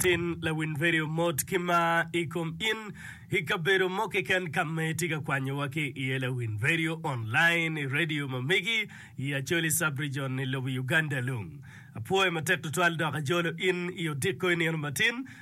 Tin lawiny redio mot ki mar i kom in i kabedo mo keken ka ma itye ka kwanyowa ki iye. Lawiny redio online i redio ma megi i Acholi Sub-Region i lobo Uganda lung. Apwoyo matek tutwal dok ajolo in i odiko i nino matin.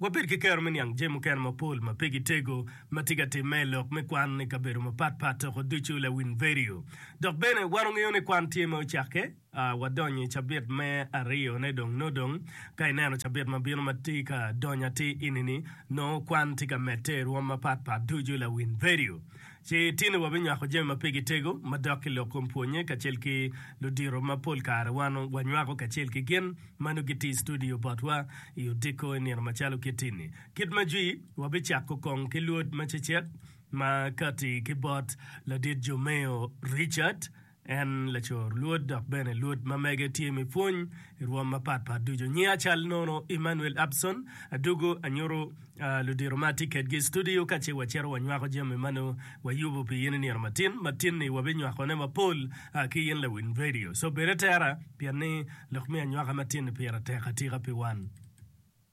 Wabed ki kero me niang jami mukene mapol ma pe gitego ma tye ka timme i lok me kwan i kabedo mapatpat toko ducu lawin vedio. Dok bene, wan ongeyo ni kwan tye me ocakke. A Wadonyo i cabit me aryone dong noo dong. Ka ineno cabit ma bino ma tye ka donyo atir ini-ni, nongo kwan tye ka medde i rwom mapatpat ducu lawin vedio. Ci itino wa binywako jami ma pigi tego madok ki lok kom pwonye kacel ki ludito ma pol kare wan wanywako kacel ki gin ma nongo gitye i studio botwa i odiko i nino macalo kit-ni. Kit ma jwi, wabicako kong ki luot macecek ma kati ki bot ladit Jomeo Richard. En lacor luot dok bene luot ma mege tye me pwony i rwom mapatpat ducu. Nyiya cal nono Emmanuel Abson, adwogo anyuto ludito ma atye kedgi i studio ka ce wacito wanywako jami ma nongo wayubo pi in i nino matin. Matin-ni wabinywakone mapol ki in lawiny redio. So bed atera pien ni lok me anywaka matin-ni pire tek atika pi wan.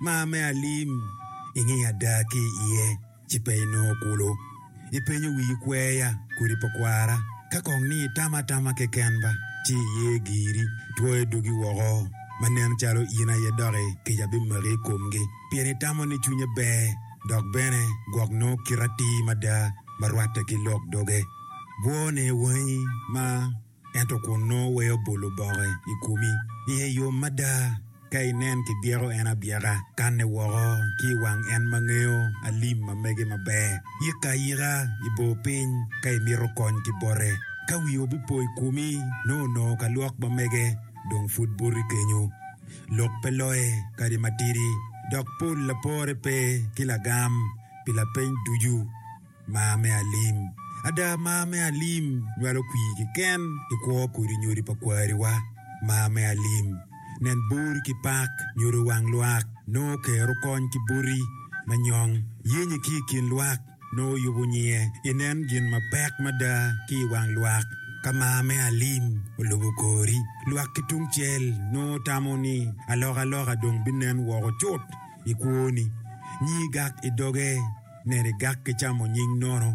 mar me alim inge ada ki iye ci pe inongo kulu. Ipenyo wii kweya kodi pe kwara. Ka kong ni itama atama keken ba ci iye giri twoyo dogi woko ma nen calo in aye doki kica abimaki i komgi pien itamo ni cwinye ber dok bene gwok nongo kite atir mada ma rwatte ki lok doge bwone wangi ma ento kun nongo weyo bolo oboke i komi. Iye yom mada ka inen kibyeko en abyeka, kanne woko ki i wang en ma ngeyo alim ma mege maber. Yik ayika i bor piny ka imito kony ki bote. Ka wiye obipo i komi nongo onongo ka lwok ma mege, dong pud buti kenyo. Lok pe loye kadi matidi, dok pol lapore pe ki lagam pi lapeny ducu. Mar me alim. Ada, mar me alim nywalo kwir keken ki kwo kodi nyodi pa kwariwa. Mar me alim. Nen bur ki pak, nyodo wang lwak, nongo kero kony ki boti ma nyong, yenye ki i kin lwak, nongo yubo nyiye, inen gin ma pek mada ki i wang lwak. Ka mar me alim olubo kori, lwak ki tungcel nongo tamo ni alokaloka dong binen woko cut i kwoni. Nyi gak i doge. Nede igak ki camo nying nono,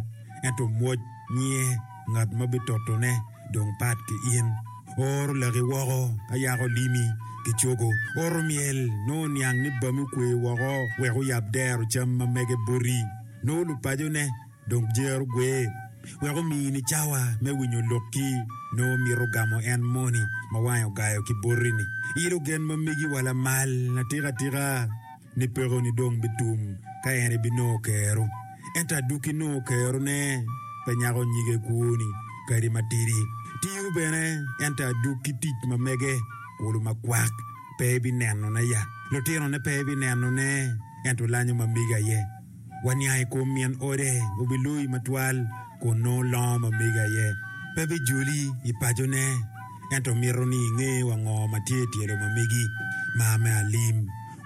ento mwoc nyiye ngat ma bitotone dong pat ki in. Oro laki woko ka yako limi ki cogo. Oro myel nongo niang ni bami okwe woko wek oyab dero cam ma mege boti. Nongo lupacone dong jero gwer wek omini cawa me winyo lokki. Nongo mito gamo en moni ma wange ogayo ki boti-ni. Ilo gen ma migiwa lamal atika tika. ni peko ni dong bitum ka en ebinongo kero, ento aduki nongo kerone pe nyako nyige kwoni kadi matidi. Tiru bene, ento aduki tic ma mege kulu makwak pe ebinenone ya lutinone pe ebinenone, ento lanyo ma mege aye. Waniang i kom min ode, obiloi matwal kun nongo longo ma mege aye. Pe bijoli i pacone, ento mito ni inge wa ngo ma tye i tyelo ma megi. Mar me alim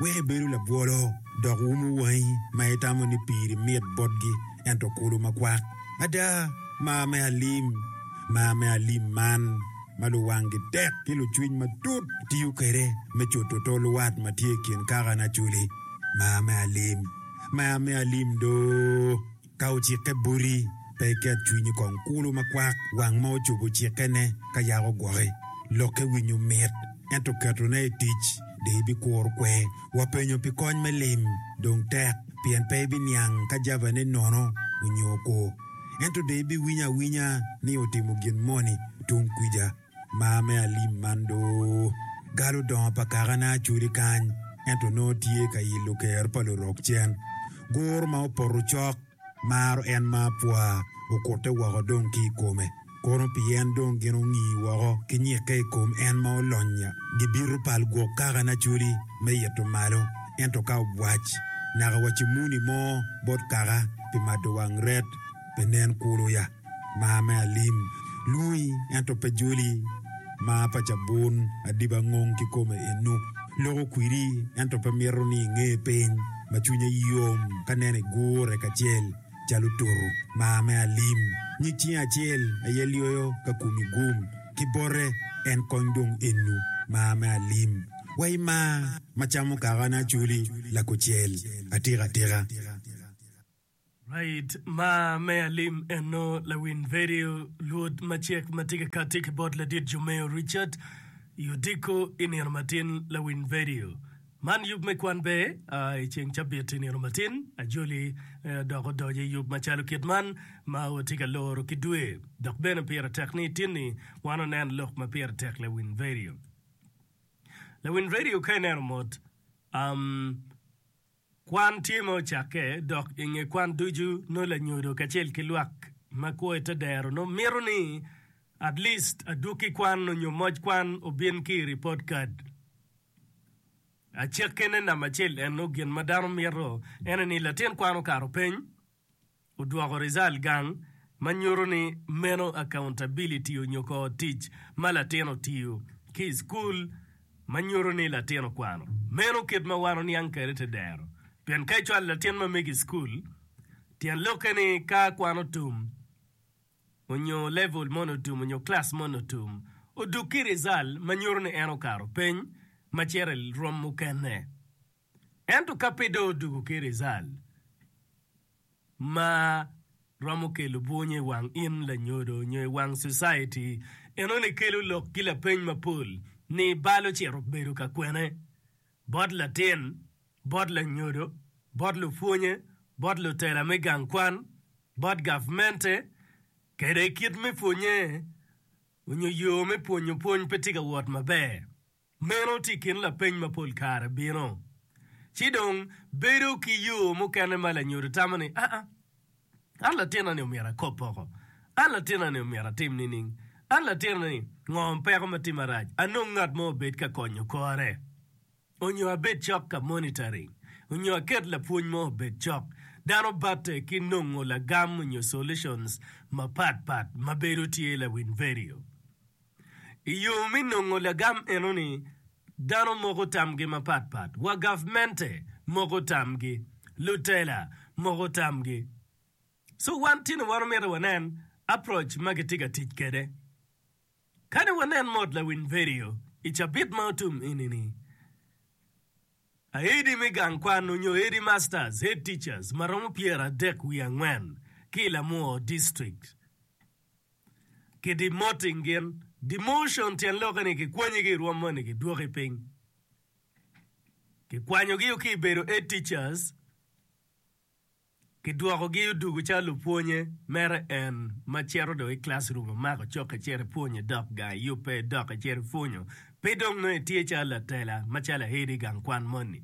weko ibedo labwolo dok umo wangi ma itamo ni piri mit botgi ento kulu makwak. Ada, mar me alim, mar me alim man ma luwanggi tek ki lucwiny matut tiyo kwede me cuto tol wat ma tye i kin kaka ni acoli. Mar me alim, Mar me alim do. Ka ocikke boti, pe iket cwinyi kong kulu makwak. Wang ma ocobo cikkene ka yako gwoki, lokke winyo mit, ento ketone i tic de ibikuro kwer. Wa penyo pi kony me lim dong tek, pien pe ibiniang ka jabane nono onyo okwo, ento de ibiwinyo awinya ni otimo gin moni tung kwica. Mar me alim man doo gal odongo pa kakane acudi kany ento nongo tye ka ilo ker pa lurok cen. Goro ma opoto cok maro en ma apwa okute woko dong ki i kome. Kono pien dong gin ongi woko ki nyikke i kom en ma olonya, gibito pal gwok kakane acudi me ito malo ento ka obwac naka wa ci muni mo bot kaka pi mato wang ret pe nen kulu ya. Mar me alim lwongi ento pe joli, mar pa cabun adiba ngong kikome enu. Loko kwidi ento pe mito ni inge piny ma cwinye yom ka neno igure kacel calo toto. Mar me alim nyig cinge acel aye lyoyo ka komi gum ki bote en kony dong enu. Mar me alim wa i mar ma camo kakane acoli lakucel atika atika. Right ma me alim eno lawin vedio luot macek ma tye ka katti ki bot ladit Jumeo Richard i odiko i nino matin lawin vedio man yub me kwan be a i ceng cabit i nino matin ajoli dok odojo i yub macalo kit man ma wa tye ka loro ki dwe dok bene pire tek ni itinni wan onen lok ma pire tek lawin vedio lawin vedio ka ineno mot am. Kwan tye ma ocakke, dok i nge kwan ducu nongo lanyodo kacel ki lwak ma kwo i te dero nongo mito ni at least adwoki kwan onyo moc kwan obin ki i report card. Acekkene namba acel eno gin ma dano mito ene ni latin kwan okato peny. Odwoko rizal gang ma nyuto ni meno accountability onyo kor tic ma latin otiyo ki i cukul ma nyuto ni latin okwano. Meno kit ma wan oniang kade te dero pien ka icwalo latin ma megi i cukul, tyen lokke ni ka kwan otum onyo level moni otum onyo class moni otum, odug ki rizal ma nyuto ni en okato peny ma cito i rwom mukene. Ento ka pe dong odwogo ki rizal ma romo kelo bwunyo i wang in lanyodo nyo i wang Society, enoni kelo lok ki lapeny mapol ni bal ocito bedo ka kwene bot latin, bot lanyodo, bot lupwonye, bot lutela me gang kwan, bot gavmente, kede kit me pwonye nyo yo me pwonyo pwony pe tye ka wot maber. Meno tye i kin lapeny ma pol kare bino. Ci dong bedo ki yo mukene ma lanyodo tamo ni, aa, an latinna-ni omyero akop oko, an latinna-ni omyero atim nining, an latinna-ni ngo peko ma tye marac, anong ngat mo obed ka konyo kore, onyo abed cok ka monitoring, onyo aket lapwony mo obed cok. Dano batte ki nongo lagam onyo solutions mapat pat ma bedo tye lawin vedio. I yo me nongo lagam enoni, dano moko tamgi mapat pat, wa gavmente moko tamgi, lutela moko tamgi. So wan tye ni wan omyero wanen approach ma gitye ka tic kwede. Kadi wanen mot lawiny vedio i cabit ma otum enini, aedi me gang kwan onyo edi masters, head teachers, ma romo pyera adek wiye angwen ki i Lamwo district ki demoting gin. Demotion tyen lokke ni kikwanyi ki i rwom moni kidwoki piny. Kikwanyo gi o ki i bedo head teachers kidwoko gi odugu calo lupwonye mere en ma cito dong i classroom omako cokke cito i pwonye dok gang yubbe dok ecito i pwonyo pe dong nongo etye calo latela macalo ahead i gang kwan moni.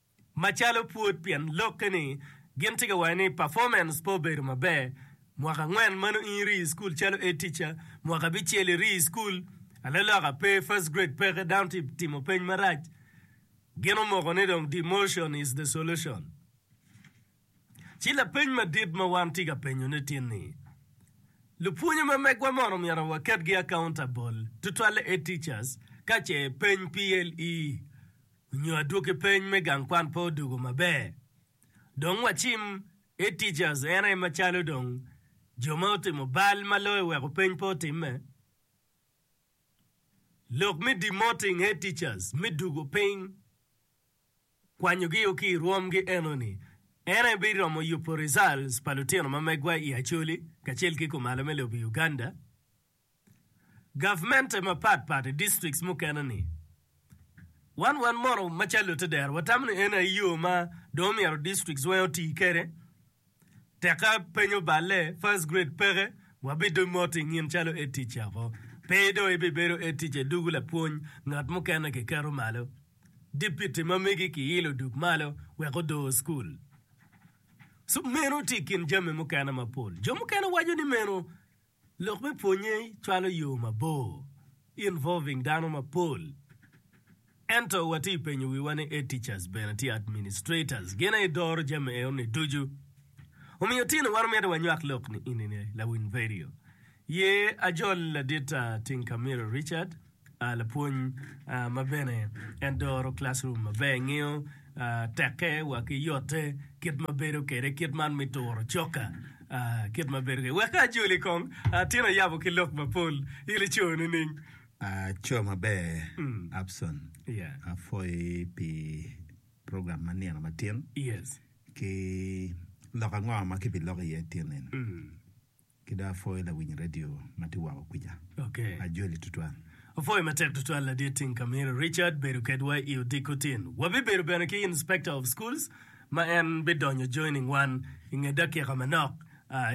Macalo pwod pien lokke ni gin tye ka waco ni pafomens pe obedo maber, mwaka angwen meno in iri i cukul calo Ed Ticca, mwaka abicel iri i cukul, alaloka pe, first grade peke, dano tye ka timo peny marac, gin omoko ni dong demotion is the solution. Ci lapeny madit ma wan tye ka penyone tye ni, Lupwonye ma megwa mono myero waketgi accountable, tutwalle Head Teachers ka ce peny PLE nyo adwoki peny me gang kwan pe odwogo maber? Dong wacim Head Teachers en aye ma calo dong jo ma otimo bal ma loyo weko peny pe otimme? Lok me demoting Head Teachers me dwogo piny. kwanyogi o ki i rwomgi enoni, en aye biromo yubo results pa lutino ma megwa i Acholi kacel ki kumalo me lobo i Uganda. Gavmente mapat pat i districts mukene ni, wan wan mono macalo lutedero watamo ni en aye yo ma dong omyero districts weng oti kede. Tek apenyo balle, first grade peke, wabiduny mot i ngin calo Ed ticce oko. Pe dong ibibedo Ed ticce dugu lapwony, ngat mukene kiketo malo. Dipiti ma megi kiilo duk malo wek odor cukul. Meno tye i kin jami mukene mapol. Jo mukene waco ni meno Lok me pwonnye cwalo yo mabor, involving dano mapol. Ento watye penyo wiwa ni ee teachers bene tye administrators, gin aye doro jami eo ni ducu. Omiyo tino wan omyero wanywak lok ni ini ni lawiny vedio. Ye ajol adita Tinkamira Richard. Lapwony ma bene en doro classroom maber ngeyo teke wa ki yote kit ma bedo kwede kit man me turo coka kit ma bedo kwede wek ajoli kong tyen ayabo ki lok mapol in i co nining? Aco maber Upson apwoyi pi program ma nino matin ki lok ango ma kibiloko iye tin eni? Ki dong apwoyo lawiny redio ma tye woko kwica. Ajoli tutwal. Apwoyo matek tutwal Ladit Tinkamira Richard bedo kedwa i odiko tin. Wabibedo bene ki Inspector of Schools ma en bidonyo joining wan i nge dakika manok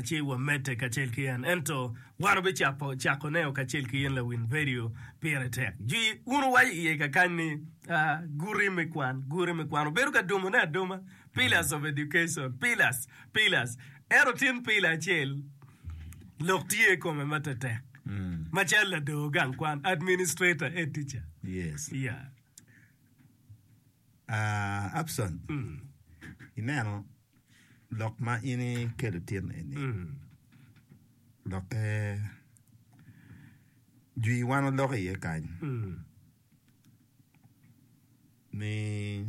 ci wamedde kacel ki en. Ento wan wubicako cako neo kacel ki in lawiny redio pire tek. Jwi wunu wa iye kakany ni guti me kwan. Guti me kwan obedo ka dumune aduma. Pillars of Education, Pilas, Pillars. Ento tin pila acel lok tye i kome ma tetek, macalo lador gang kwan, administrator, head teacher. Yes. Yeah. Ah, Abson, Mm. ineno lok ma in ikelo tin eni, Mm. lokke jwi wan oloko iye kany Mm. ni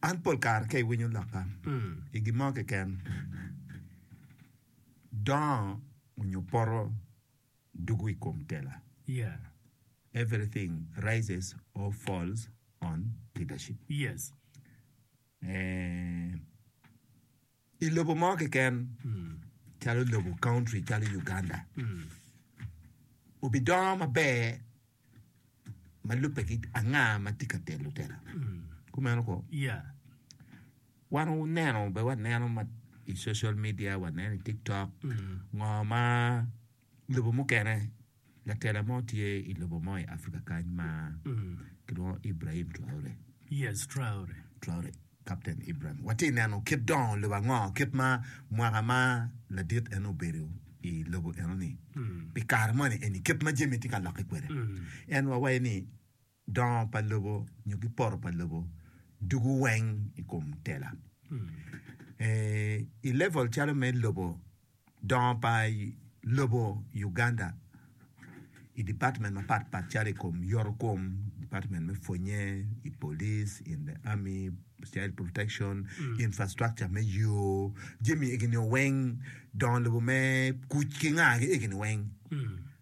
An pol kare ka iwinyo lokka i gin mo keken, dongo nyo poto dugo i kom tela. Everything rises or falls on leadership. I lobo mo keken calo lobo country calo Uganda obidongo maber ma lubbe ki anga ma tye ka telo tela kumeno ko wan oneno bene waneno i social media waneno i tiktok ngo ma Lobo mukene, Latela mo tye i lobo mo i Afrika kany ma kilwongo Ibrahim Traore. Yes, Traore. Traore, Kapten Ibrahim. Watye ka neno kit dongo lobo ango, kit ma mwaka ma ladit en obedo i lobo enoni. Pi kare moni eni, kit ma jami tye ka lokke kwede, en wawaco ni, dongo pa lobo nyo ki poto pa lobo dugu weng i kom tela. I level calo me lobo, dongo pa lobo Uganda i department mapat pat calo i kom yoto kom, department me pwonye, i police, in the army, child protection, infrastructure me yo, jami egi nio weng, dongo lobo me kuc ki nga gi egi ni weng.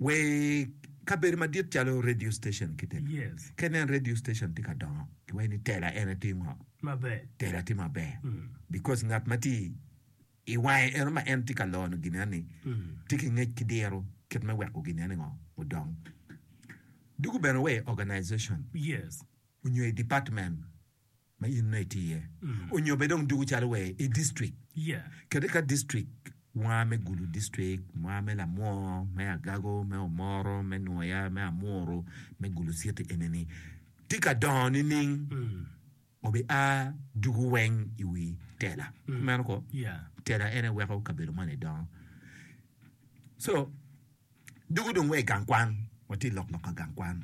Wa i kabedo madit calo radio station kiten. Ka inen radio station tye ka dongo, iwaci ni tela en aye tye ngo? Tela tye maber because ngat ma tye i wange eno ma en tye ka loyo gin eno-ni tye ki ngec ki diro kit me weko gin eno-ni ngo? Odong. Doko bene wa i organization onyo i department ma in nongo itye iye, onyo bed dong dugu calo wai i district, kadi ka district wa me Gulu district wa me Lamwor, me Agago, me Omoro, me Nwoya, me Amuru, me Gulu city eni ni tye ka dongo nining obi a dugu weng i wi tela, kumeno ko, tela en aye weko kabedo moni dongo. So. Dugo dong wa i gang kwan. Watye lok lok ka gang kwan.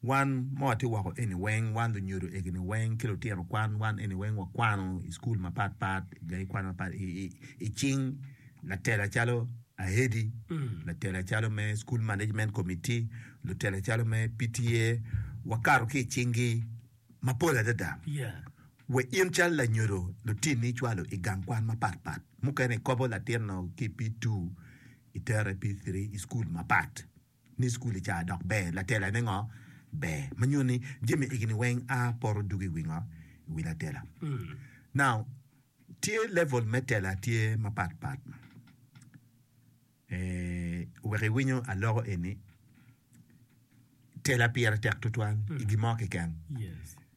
Wan ma watye woko eni weng, wan lunyodo egini weng ki lutino kwan, wan eni weng wakwano i cukul mapat pat, i gangi kwan mapat, i cing latela calo Ahedi, latela calo me School Management Committee, lutela calo me PTA, wakato ki i cinggi mapol adada. Wa in calo lanyodo, lutinni icwalo i gang kwan mapat pat. Mukene ikobo latinno ki i P2, Itere P3 i cukul mapat ni cukul ica dok ber latela me ngo ber ma nyuto ni jami egini weng a poto dugo iwi ngo iwi latela now tye level me tela tye mapat pat ee wek iwinyo aloko eni tela pire tek tutwal igi mo kiken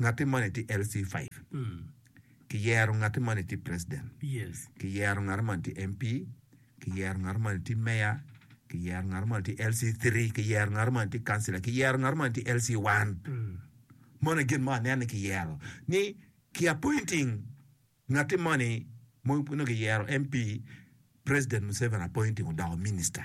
Ngati moni tye LC five. Ki yero ngati moni tye president. Ki yero ngati moni tye MP. Ki yero ngati moni tye mayor. Ki yero ngati moni tye LC three. Ki yero ngati moni tye councilor. Ki yero ngati moni tye LC one. Moni gin mo aneno ni ki yero ni ki appointing ngati moni ma onongo ki yero MP president Museveni appointing odoko minister.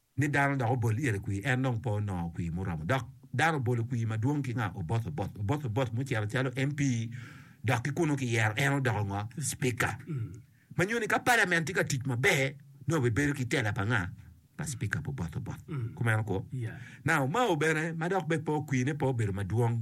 ni dano dok obol ire kwir, en dong pe onongo kwir muromo. Dok dano obolo kwir madwong ki nga? Oboth Oboth. Oboth Oboth mucito calo MP dok ki kunu kiyero en odoko ngo? Spika. Ma nyuto ni ka Paliament tye ka tic maber, nongo bibedo ki tela pa nga? Pa Spika pa Oboth Oboth. Kumeno kwo. Now Mao bene ma dok bene pe okwirne pe obedo madwong,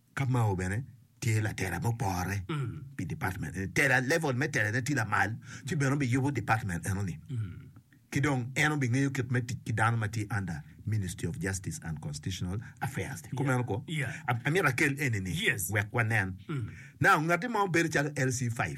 Kamau bene tye latela mupore pi department eni. Tela, level me telane tye lamal, ci bene obiyubo department enoni. Ki dong en obingeyo kit me tic ki dano ma tye under Ministry of Justice and Constitutional Affairs. Kong meno kwo? Am- Amito akel eni-ni wek wanen. Now, ngati mo bedo calo LC5.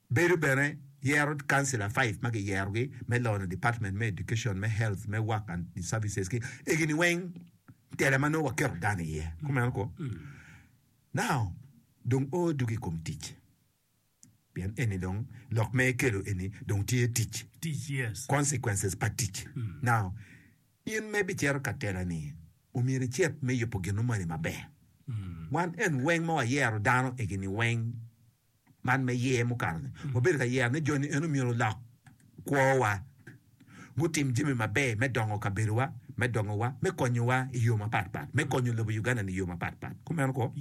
Bedo bene yero kancila five ma giyerogi me loyo na department me education, me health, me work and services ki egini weng tela ma nongo waketo dano iye kumeno ko now dong o dugu i kom tic pien eni dong lok me kelo eni dong tye tic Tic, yes. consequences pa tic now in ma ibicito ka tela ni omyero icit me yubo gin mo moni maber wan en weng ma wayero dano egini weng man me yer mukato-ni, wabedo ka yero ni joni eno myero olok kwowa, gutim jami maber me dongo kabedowa, me dongowa, me konyowa i yo mapat pat, me konyo lobo Uganda-ni i yo mapat pat. Kumeno kwo.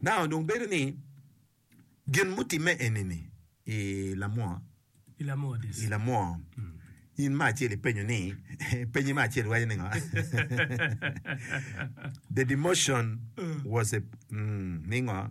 Now, dong bedo ni gin mutimme eni-ni i Lamwo, i Lamwo, in me acel ipenyo ni, penye me acel iwaco ni ngo? The demotion was a, ni ngo?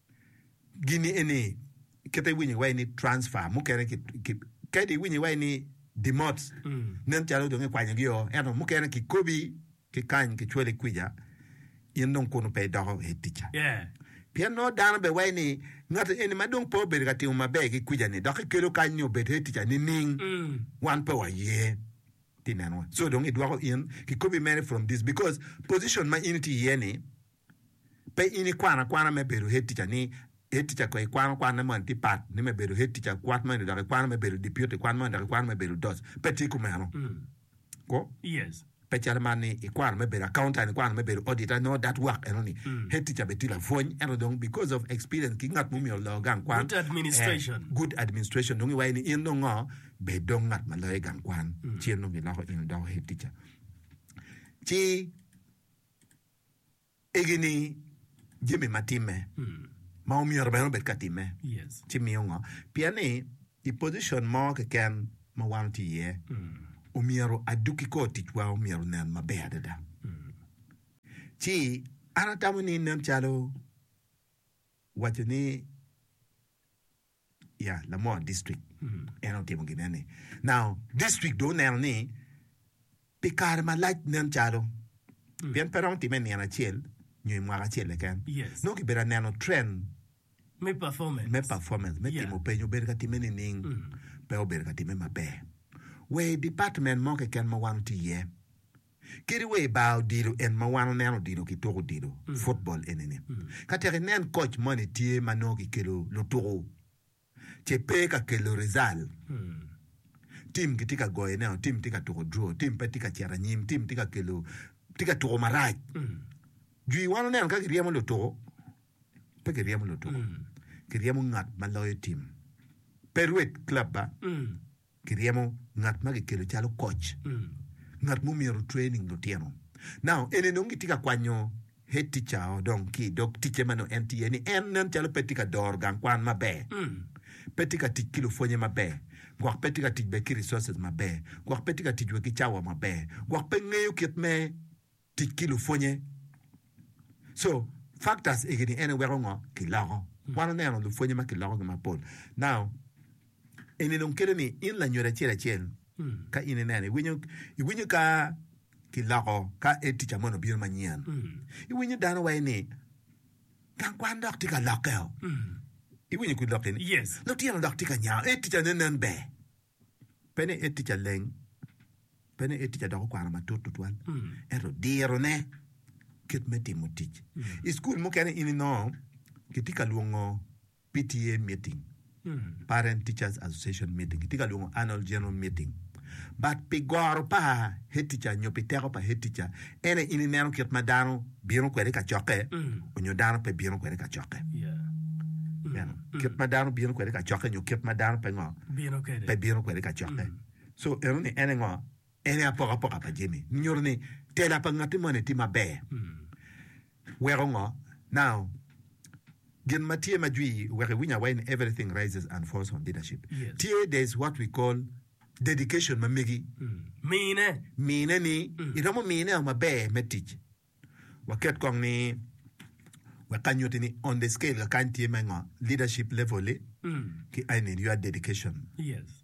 Gini eni kite iwinyo iwaci ni transfer mukene ki, ki kadi iwinyo iwaci ni demotes nen calo dong ikwanyogi o ento mukene kikobi ki kany kicwali kwica in dong kunu pe idoko i ticca. Yeah. Pien nongo dano bene waci ni ngat eni ma dong pe obedo ka timo maber ki kwica-ni dok ikelo kany ni obed te ticca nining? Mm. Wan pe waye pi nenowa. So dong idwoko in kikobi mere from this because position ma in itye iye-ni Pe in ikwano akwana me bedo head teacher ni head teacher ko ikwano kwan ne moni tye part ni me bedo head teacher kwat moni dok ikwano me bedo deputy kwan moni dok ikwano me bedo doc. Pe tye kumeno. Ko? Yes. Pe calo man ni ikwano me bedo accountant, ikwano me bedo auditor, no that work eno ni. Head teacher bene tye lapwony ento dong because of experience ki ngat ma omyero olo gang kwan. Good administration. Eh, good administration dong iwaco ni in dong ngo? Bed dong ngat ma loyo gang kwan. Ci en dong giloko in idoko head teacher. Ci igi ni jami ma timme ma omyero bene obed ka timme ci miyo ngo? Pien ni i pocicon mo keken ma wan otye iye, omyero adukki kor ticwa omyero onen maber adada. Ci an atamo ni nen calo waco ni, ya lamor district en otimo gin eni now district do oneno ni pi kare malac nen calo mm. pien pe romo time nino acel nyo i mwaka acel leken yes. nongo kibedo aneno trend me performance me performance me yeah. timo penyo obedo ka time nining mm. pe obedo ka time maber we department mo keken ma wan tye iye Kadi wa i bar odilo en ma wan oneno odilo ki tuko odilo, football eni-ni, ka tek inen koc moni tye ma nongo kikelo lutuku ce pe ka kelo rizal, tim gitye ka goyo ineno, tim tye ka tuko draw, tim pe tye ka cito anyim, tim tye ka kelo tye ka tuko marac. Jwi wan oneno ka kiryemo lutuku, pe kiryemo lutuku, kiryemo ngat ma loyo tim. Pe rwed club ba? Kiryemo ngat ma kikelo calo koc, ngat mo myero training lutino. Now eni nongo gitye ka kwanyo head teacher o dong ki idog ticce ma nongo en tiye ni en nen calo pe tye ka doro gang kwan maber, pe tye ka tic ki lupwonye maber, gwok pe tye ka tic bene ki resources maber, gwok pe tye ka tic wa ki cawa maber, gwok pe ngeyo kit me tic ki lupwonye. So factors egi ni ene weko ngo ki loko. Wan oneno lupwonye ma ki loko gi mapol. Now eni dong kelo ni in lanyodo acel acel ka in ineno iwinyo iwinyo ka ki loko ka e teacher moni obino manyen iwinyo dano waci ni gang kwan dok tye ka lokke o iwinyo ki lokke ni lutino dok tye ka nyaa o e teacher ne nen ber. Pe ni en ticca leng, pe ni en ticca dok okwano matut tutwal, ento dirone kit me timo tic. I cukul mukene in inongo kitye ka lwongo PTA meeting, Parent Teachers Association meeting, kitye ka lwongo Annual General Meeting, but pi goro pa head teacher nyo pi teko pa head teacher, En aye in ineno kit ma dano bino kwede i kacokke onyo dano pe bino kwede i kacokke. Ineno? Kit ma dano bino kwede i kacokke nyo kit ma dano pe ngo? Pe bino kwede i kacokke. So, eno ni en aye ngo? En aye apokapoka pa jami. Nyuto ni tela pa ngatti moni tye maber. Weko ngo? Now, gin ma tye ma jwi weko iwiny awa in everything rises and falls on leadership. Tye there is what we call dedication ma megi Mine. mine ni iromo mine o maber me tic. Waket kong ni wek anyuti ni on the scale kakany tye me ngo? Leadership level-li ki I need your dedication. Yes.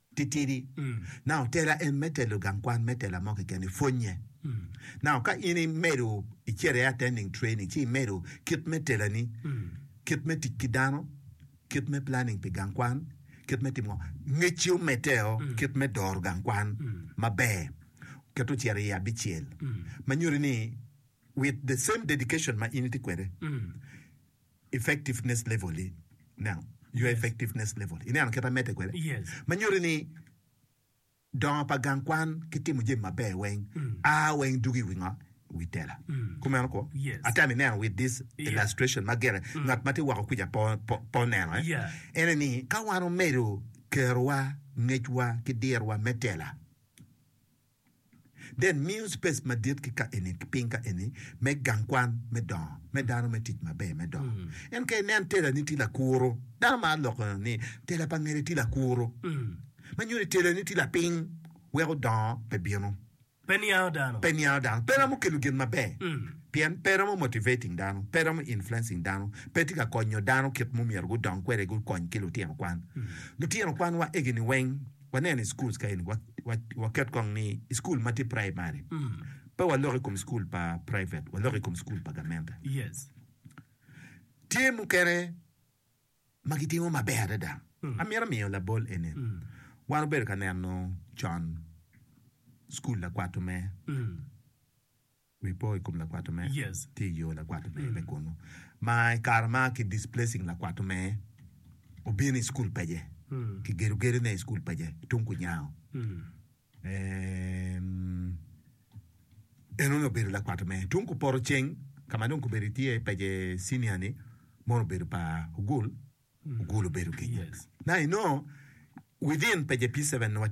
Titidi, nano tela en me telo gang kwan me tela mo keken i pwonye. Nano ka in imedo i career attending training ci imedo kit me telani, kit me tic ki dano, kit me planning pi gang kwan, kit me timo ngo, ngecci omedde o kit me doro gang kwan maber kit ocito i abicel ma nyuti ni with the same dedication ma in itye kwede. Effectiveness level i neno, your effectiveness level, ineno kit amedde kwede? Ma nyuti ni dongo pa gang kwan ki timo jami maber weng a weng dugo i wi ngo? I wi tela. Kumeno kwo? Atemo ineno with this illustration ma gire ngat ma tye woko kwica pe pe oneno aye. En aye ni ka wan omedo kerowa, ngecwa ki dirowa me tela, Then miyo space madit ki ka eni ki piny ka eni me gang kwan me dongo me dano me tic maber me dongo. En ka inen tela ni tye lakuro, dano maro loko ni tela pa ngede tye lakuro ma nyuto ni tela ni tye lapiny weko dongo pe bino. Pe niango dano. Pe niango dano. Pe romo kelo gin maber. Pien pe romo motivating dano, pe romo influencing dano, pe tye ka konyo dano kit ma omyero gudong kwede gukony ki lutino kwan. Lutino kwanwa egini weng. waneno i schools ka eni, waket kong ni i school ma tye primary, pe walok i kom school pa private, walok i kom school pa gamente. Yes. Tye mukene ma gitimo maber adada. Mm. Amito miyo labol eni. Mm. Wan obedo ka neno con school lakwatu me. Mm. Wi po i kom lakwato me tye i yo lakwato me me kunu ma i kare ma ki displacing lakwato me obino i school pece ki gedo gedo ne i school pece tung kunyango en onongo obedo lakwato me tung ku poto ceng ka ma dong kubedo itye pece senior ni mono obedo pa ogul ogul obedo kenyo na inongo within pece P7 nongo watye